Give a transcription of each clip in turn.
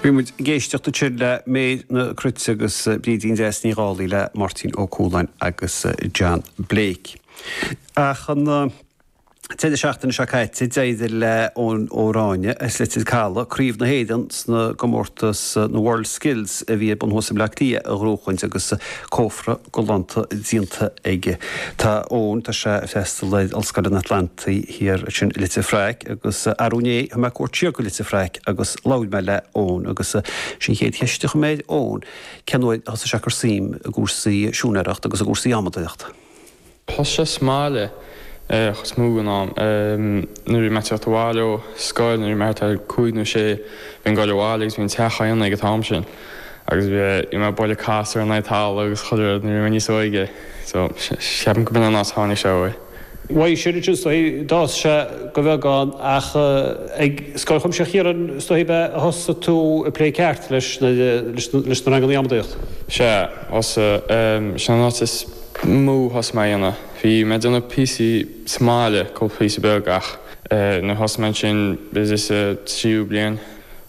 Bhí muid ag éisteacht ansin le Méabh na Cruite agus Brídín Deas Ní Dhálaigh le Máirtín Ó Cualáin agus John Blake. Ach an deireadh seachtaine seo caite d'éirigh le Eoin Ó Ráinne as Leitir Calaidh craobh na hÉireann sna gcomórtas na World Skills a bhí ar bun thuas i mBleá Cliath a ghnóthachaint agus cófra galánta díonta aige. Tá Eoin, tá sé a' freastal ar Ollscoil an Atlantaigh Thiar ansin i Leitir Fraic agus arú inné thug mé cuairt siar go Leitir Fraic agus labhair mé le Eoin agus sin an chéad cheist a chuir mé air, Eoin, cén uair a thosaigh sé a cur suim i gcúrsaí siúinéireachta agus i gcúrsaí adhmadóireachta? Thosaigh sé sa mbaile chuid is mó den am nuair a bhí mé ag teacht abhaile ó scoil, nuair a bhí mé thart ar chúig nó sé, bhínn ag goil abhaile agus bhí an teach á dhéanamh ag an t-am sin, agus bhí bhí mé ag bualadh casúr in aghaidh talamh agus chuile rud nuair a bhí mé níos óige, so cheapaim go b'in an áit a tháinig sé uaidh. Uaidh sin ansin is dóichí, d'fhás sé de bheagán, ach ag Scoil Chuimsitheach Chiaráin is dóichí ab ea a thosaigh tú ag plé ceart leis na ranganna adhmadóireachta? Sea, thosaigh. Sin an áit is mó a thosaigh mé á dhéanamh. Bhí mé ag déanamh píosaí sa mbaile, cúpla píosa beag ach eh nuair a thosaigh mé ansin istigh sa tríú bliain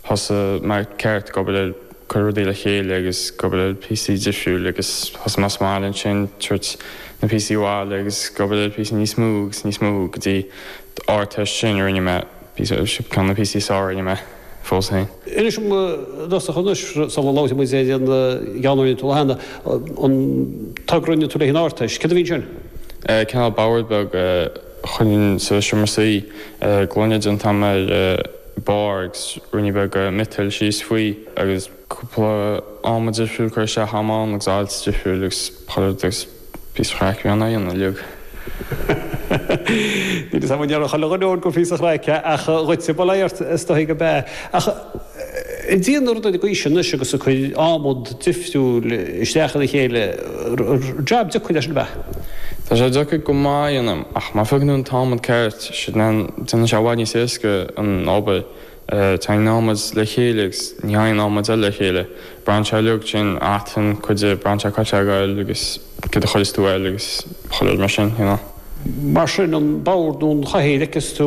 thosaigh mé ceart ag obair ar cur rudaí le chéile agus ag obair ar píosaí difriúil agus thosaigh mé sa mbaile ansin tabhairt na píosaí abhaile agus ag obair ar píosaí níos mó agus níos mó go dtí an Ardteist ansin a rinne mé píosa ceann de na píosaí is fearr a rinne mé. fós féin. Inis dom i dtosach anois, sula labhraíonn muid ar an gceann a rinne tú cheana, an togra a rinne tú le haghaidh an Ardteist, céard a bhí ansin? Cineál bord beag a chuirfinn sa seomra suí, gloine déanta amach ar bharr agus rungaí beag miotail síos faoi agus. cúpla adhmad difriúil curtha isteach a'm ann agus ailt difriúil agus chuir agus píosa craic a bhí ann á dhéanamh uilig. Ní déarfadh chuile dhuine ann gur píosa craic ach dhuitse ba leigheas ort is dóigh ab ea ach ag déanamh na rudaí gaoise anois agus ag cur adhmad difriúil isteach ina chéile job deacair é sin ab ea? Tá sé deacair go maith a dhéanamh ach má faigheann tú an t-adhmad ceart déanann sé i bhfad níos éasca an obair. Tagann adhmad le chéile agus ní thagann adhmad eile le chéile. Braitheann sé uilig sin aithin cuid de braitheann sé cá tá sé ag goil agus céard a chuireas tú air agus chuile rud mar sin, you know. Mar sin an bord nó an chathaoir a fheiceas tú?